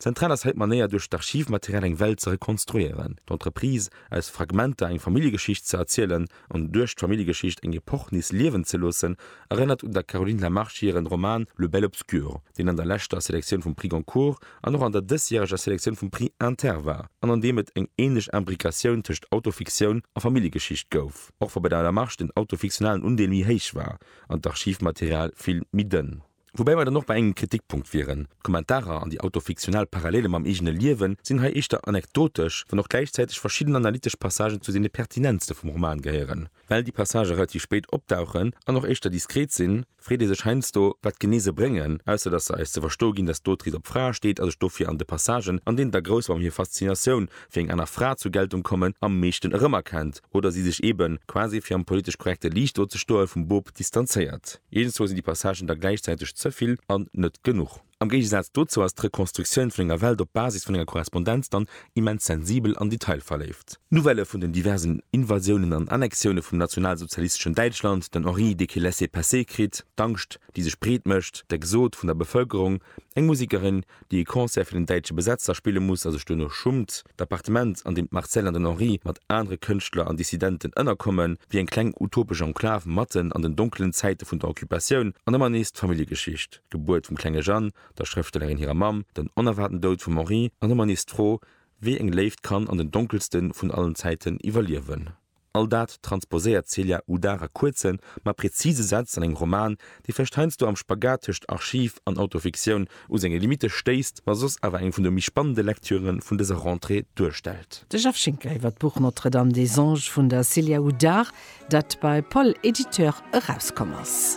Zentral ass hei d'Manéier duerch d'Archivmaterial eng Welt ze rekonstruieren, d'Entreprise aus Fragmenter eng Familljegeschicht ze erzielen an duerch d'Familljegeschicht eng Epoch nees liewen ze loossen, erënnert un der Caroline Lamarche hiren Roman Le bel obscur, deen an der leschter Selektioun vum Prix Goncourt an och an der dësjäreger Selektioun vum Prix Inter war an an deem et eng ähnlech Imbricatioun tëscht Autofiktioun a Familljegeschicht gouf, och wa bei der Lamarche den autofiktionalen Undeel méi héich war an d'Archivmaterial vill méi dënn. Woubäi mer dann och bei engem Kritikpunkt wieren, D'Kommentarer an déi autofiktional Parallele mam eegene Liewen sinn hei éischter anekdotesch, wann och gläichzäiteg verschidden analytesch Passagen zu deene pertinentste vum Roman gehéieren. Well déi Passagë relativ spéit opdauchen an och éischter diskret sinn, freet ee sech heiansdo, wat genee se bréngen, ausser dass se eis ze verstoe ginn, dass d'Autrice op Frae steet a sech dofir an de Passagen, an deenen d'Agrouswam hir Faszinatioun fir eng aner Fra zur Geltung kommen, am meeschten erëmerkennt, oder si sech eeben, quasi fir am politesch korrekte Liicht do ze stoen, vum Boob distanzéiert. Eenzel sinn déi Passagen da gläichzäiteg ze vill an net genuch. Am Géigesaz dozou ass d'Rekonstruktioun vun enger Welt op Basis vun enger Korrespondenz dann immens sensibel an detailverléift. D'Nouvellë vun den diversen Invasiounen an Annexioune vum nationalsozialisteschen Däitschland, den Henri dee kee laisser-passer kritt, d'Angscht, déi sech breet mécht, d'Exode vun der Bevëlkerung, eng Musekerin, déi e Concert fir den däitsche Besetzer spille muss a sech duerno schummt, d'Appartement, an deem d'Marcelle an den Henri mat anere Kënschtler an Dissidenten ënnerkommen, wier eng kleng utopesch Enklav matten an den donkelen Zäite vun der Occupatioun, an ëmmer nees d'Familljegeschicht, d'Gebuert vum klenge Jeanne, der Schrëftstellerin hirer Mamm, den onerwaarten Doud vum Henri, an ëmmer nees d'Fro, wéi eng Léift kann an den donkelste vun allen Zäiten iwwerliewen. All dat transposéiert d'Celia Udar a kuerzen, ma präzise Sätz an engem Roman, dee vläicht heiansdo am Spagat tëscht Archiv an Autofiktioun u senge Limitte stéisst, ma soss awer eng vun de méi spannende Lektüre vun dëser Rentrée duerstellt. De Jeff Schinker iwwer d'Buch Notre-Dame des Anges vun der Celia Udar, dat bei Poll Éditeur erauskomm ass.